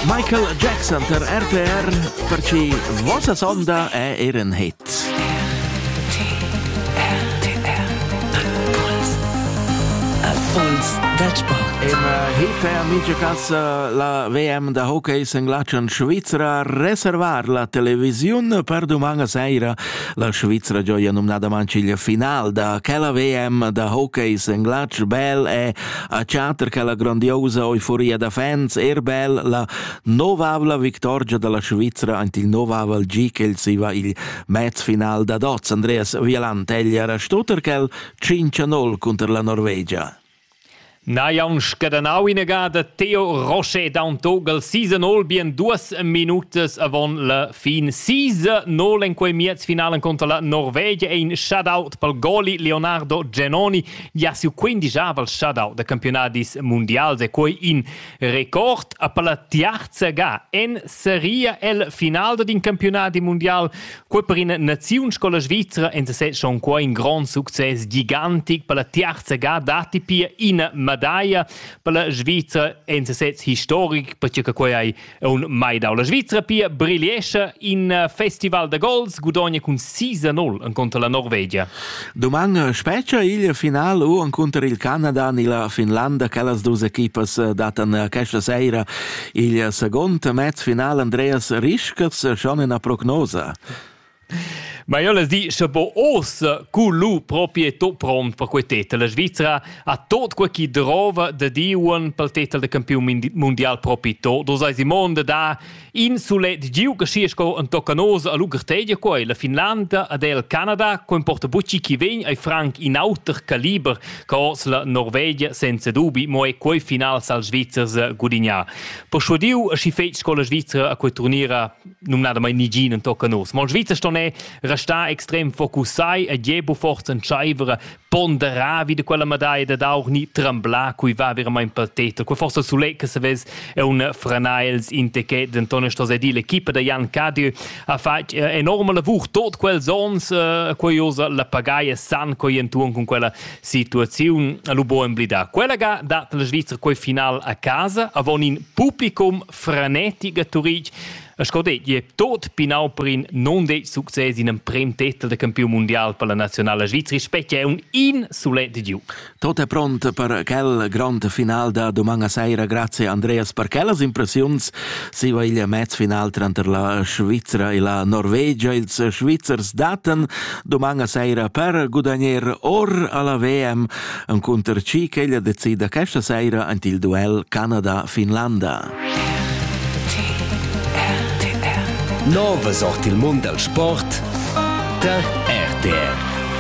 Michael Jackson per RTR per ci vossa sonda è er ein hit. Puls dal Sport. Im äh, Hita Amicekas äh, la WM da hockey senglatschen Svizra reservar la televisiun per domanga seira la Svizra gioia numnada manciglia final da quella WM da hockey senglatsch bel e a chatter quella grandiosa euforia da fans er bel la novavla victorgia dalla Svizra ant il novavel gi ch'el siva il mez final da dots Andreas Vieland eglia era Stutterkel 5-0 cunter la Norvegia. Na jaunsch gadanau inegada Theo Roche Dantogel season all bien duas minutas avon la fin sisa nol en quei miez finalen contra la Norvegia ein shut out pal goli Leonardo Genoni Ja siu quindijavel shadau da campiunadis mundials e quei in record a palla tiarza ga en seria el final d'in campiunadi mundial quei per ina naziun scola svizra en se schon quei in grond success gigantic per la tiarza ga dati pia ina medaglia per la Svizra en se historic perché che quei hai Un mai dau la Svizra pia brigliescha in eh, festival da gols gudogna cun 6-0 en contra la Norvegia. Doman eh, spetga il final u en contra il Canada ni la Finlanda quellas dus equipas eh, datan questa sera il second mez final Andreas Rischers schon una prognosa. Ma io les di, sche po os cu lu proprieto pront per quei tetel. La Svizzera ha tot quei chi drova da diuan pel tetel de campiun mundial propi to. Do sai Simon de da in sulet giu che schi sco en toccanosa a Lugertedia quei, la Finlanda ad el Canada, co importa bucci chi ven ai franc in auter caliber che os la Norvegia senza dubi, mo è quei final sal Svizzers gudignar. Per schudiu a schi fetg sco la Svizzera a quei turnira numnadamain nigin entochen nos. Mal Svizzer ston è restà extrem focussai e Diebo forza entscheiver ponderar wie de quella medaglia da auch ni tremblar cui va veramente per tetra. Quei forse sulet che se vez è un franaels in te che denton sto sedi l'equipa da Jan Cadieu ha fatg eh, enorme lavur tot quels ons eh, curiosa la pagaia san coi entuon con quella situazione a lubo emblida. Quella ga dat la Svizzera quei final a casa avon in publicum frenetic a Turitg. E sco detg, tot pinau per in non detg success in emprem titel de campiun mundial per la nazionala Svizzera, specie è un insulet giu. Tot è pront per quel grand final da doman a sera, grazie Andreas per quellas impressiuns. Si va il mezz final tranter la Svizzera e la Norvegia. Ils Svizzers datan doman a sera per gudagnare or alla VM encunter chi ch'ella decida questa saira ant il duel Canada-Finlanda. Nova sort il mund dal sport tar RTR.